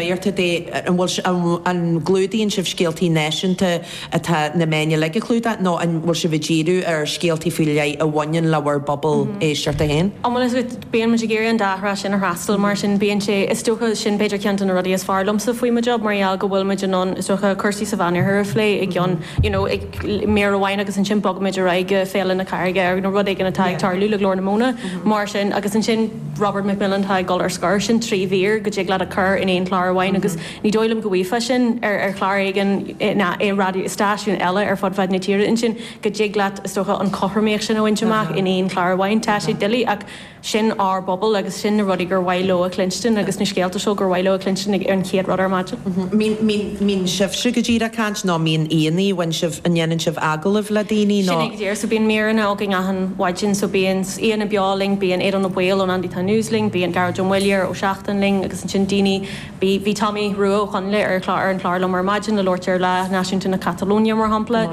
Iarrtha de, an bhfuil sibh, an gclúdaíonn sibh scéaltaí náisiúnta atá na meáin uilig a chlúdach nó an bhfuil sibh ag díriú ar scéaltaí faoi leith a bhaineann le bhur bpobal éisteachta féin? Ó, bhuel, is ait, bíonn muid ag iarraidh an dá thrá sin a fhreastal mar sin bíonn sé, is dócha, sin b'fhéidir ceann de na rudaí is fearr liomsa faoi mo job mar gheall go bhfuilimid in ann, is dócha, cúrsaí sa Mheánoirthear a phlé i gceann, you know, i mír amháin agus ansin bogaimid ar aghaidh go Féile na Carraige nó rud éigin atá ag tarlú le Glór na Móna mar sin agus ansin, Robert McMillen atá ag dul ar scor. Sin trí mhír go dtig leat a chur in aon chlár amháin agus ní dóigh liom go bhfaighfeá sin ar chlár eile ná i raidió, i stáisiún eile ar fud fad na tíre. Ansin go dtig leat, is dócha, an chothromaíocht sin a bhaint amach in aon chlár amháin. Tá sé doiligh ach sin ár bpobal agus sin na rudaí gur mhaith leo a chluinstin agus na scéalta seo gur mhaith leo a chluinstin ag an chéad rud ar maidin. An mbíonn sibhse go díreach ag caint nó an mbíonn aíonna libh, an ndéanann sibh agallaimh le daoine nó? Sin é go díreach so bíonn míreanna againn achan mhaidin so bíonn, Aíonna beo linn bíonn Aodán Ó Baoill ón Andytown News linn, bíonn Gearóid Ó Muilleoir ó Seachtain linn agus ansin daoine, bhí, bhí Tommy Rua Ó Conghaile ar chlár, ar an chlár liom ar maidin le labhairt ar Lá Náisiúnta na Catalóine mar shampla,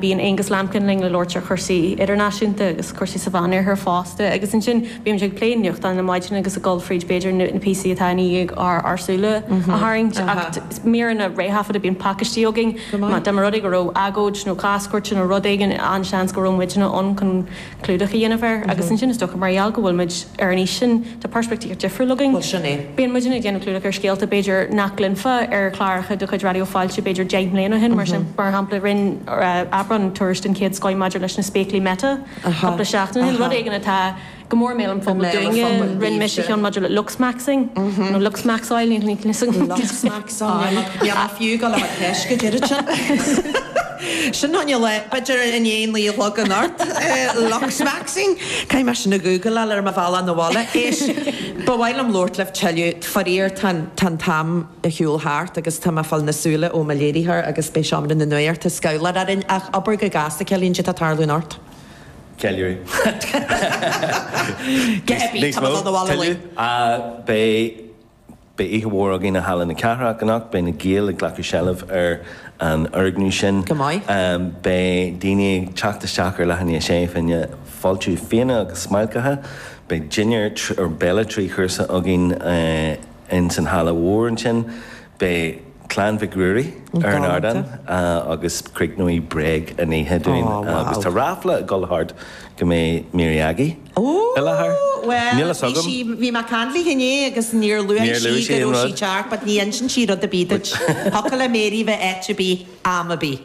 bíonn Aongus Lambkin linn le labhairt ar chúrsaí idirnáisiúnta agus cúrsaí sa Mheánoirthear fosta agus ansin bímid ag plé nuachtáin ar maidin agus ag dul fríd b'fhéidir na píosaí atá i ndiaidh ár, ár súile a tharraingt ach míreanna réthaifeadta, bíonn pacaistí againn, dá mba rud é go raibh agóid nó cás cúirte nó rud éigin an-seans go raibh muidinne ann chun. clúdach a dhéanamh air agus ansin is dócha mar gheall go bhfuilimid ar an aois sin tá peirspictíocht difriúil againn. Bhuel sin é. Bíonn muidinne ag déanamh clúdach ar scéalta b'fhéidir nach gcluinfeá ar chláracha de chuid Raidió Fáilte b'fhéidir deich mbliana ó shin mar sin. Mar shampla rinn Aibreán tuairisc den chéad scoth maidir leis na spéaclaí Meta cúpla seachtain ó shin, rud éigin atá go mór i mbéal an phobail dúinne, rinn mise ceann maidir le looksmaxxing nó looksmaxxáil, níl 'fhios agam. Aye, bheadh fiú gan a bheith ceist go deirid sin. Sin an fhile, b'fhéidir in aon laoi a thagann ort. Looksmaxxing? Caithfidh mé sin a ghúgláil ar mo bhealach 'na bhaile. Éist, ba mhaith liom labhairt libh tuilleadh, faraor tá an, tá an t-am ag siúl thart agus tá mé ag fáil na súile ó mo léiritheoir agus beidh seomra na nuachta ag scolladh orainn ach abair go gasta Caoimhín caidé atá ag tarlú anocht. Ceiliúradh. Níos mó, tell you. Beidh Beidh oíche mhór againn i Halla na Cathrach anocht. Beidh na Gaeil ag glacadh seilbh ar an fhoirgneamh sin. Go maith. Beidh daoine ag teacht isteach ar leath i ndiaidh a sé faoi choinne. Fáilte fíona agus smailceanna. Beidh dinnéar béile trí chúrsa againn ins an halla mhór ansin. Beidh. Clann Mhic Ruairí ar an ardán agus críochnóidh Bréag an oíche dúinn agus tá ráfla ag dul thart go mbeidh Mary Aggie i láthair. Níl fhios agam. Bhuel, bhí sí, bhí mé ag caint léi inné agus níor luaigh sí go raibh sí ag teacht but ní insíonn sí rud ar bith duit. Thiocfadh le Mary bheith áit ar bith, am ar bith.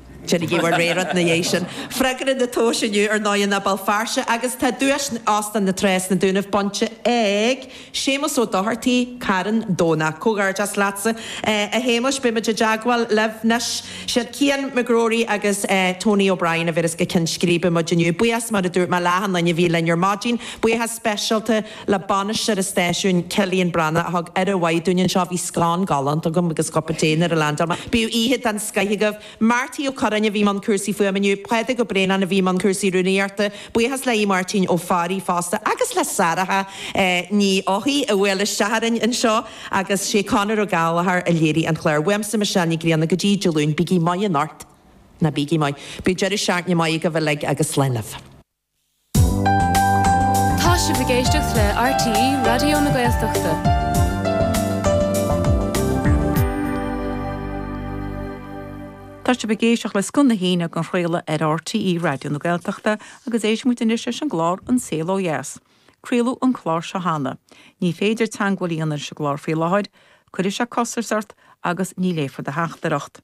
Déanaigí bhur réiteach 'na dheidh sin. Freagra an tomhais inniu ar ndóigh ná Béal Feirste agus tá duais Óstán na Trá sna Dúnaibh bainte ag Séamus Ó Dochartaigh, Carn Domhnach. Comhghairdeas leatsa a Shéamuis. Beimid i dteagmháil libh 'nois. Siad Cian McGrory agus Tony O'Brien a bhéas go cionn scríbe muid inniu. Buíochas mar a dúirt mé le achan nduine a bhí linn ar maidin. Buíochas speisialta. le bainisteoir an stáisiúin, Cillian Breathnach, a thug aire mhaith dúinn anseo. Bhí scón galánta agam agus cupán tae nuair a leaindeáil mé. Bíodh oíche den scoth agaibh. Máirtín Ó Curráin a bhí i mbun cúrsaí fuaime inniu. Pádraig Ó Braonáin a bhí i mbun cúrsaí rúnaíochta. Buíochas le Aodh Máirtín Ó Fearraigh fosta agus le Sarah Ní Eochaidh a bhuail isteach orainn anseo. Agus sé Conor Ó Gallchóir a léirigh an clár. Uaimse, Michelle Nic Grianna, go dtí Dé Luain, bígí maith in ort. Ná bígí maith. Bíodh deireadh seachtaine maith agaibh uilig agus slán libh. Tá sibh ag éisteacht le RTÉ Raidió na Gaeltachta. Tá sibh ag éisteacht le Scoth na hAoine dhá chraoladh ar RTÉ Raidió na Gaeltachta agus éistfidh muid anois leis an gclár An Saol Ó Dheas. Craoladh an clár seo cheana. Ní féidir teagmháil a dhéanamh leis an gclár faoi láthair. Cuirfear costas ort agus ní léifear do theachtaireacht.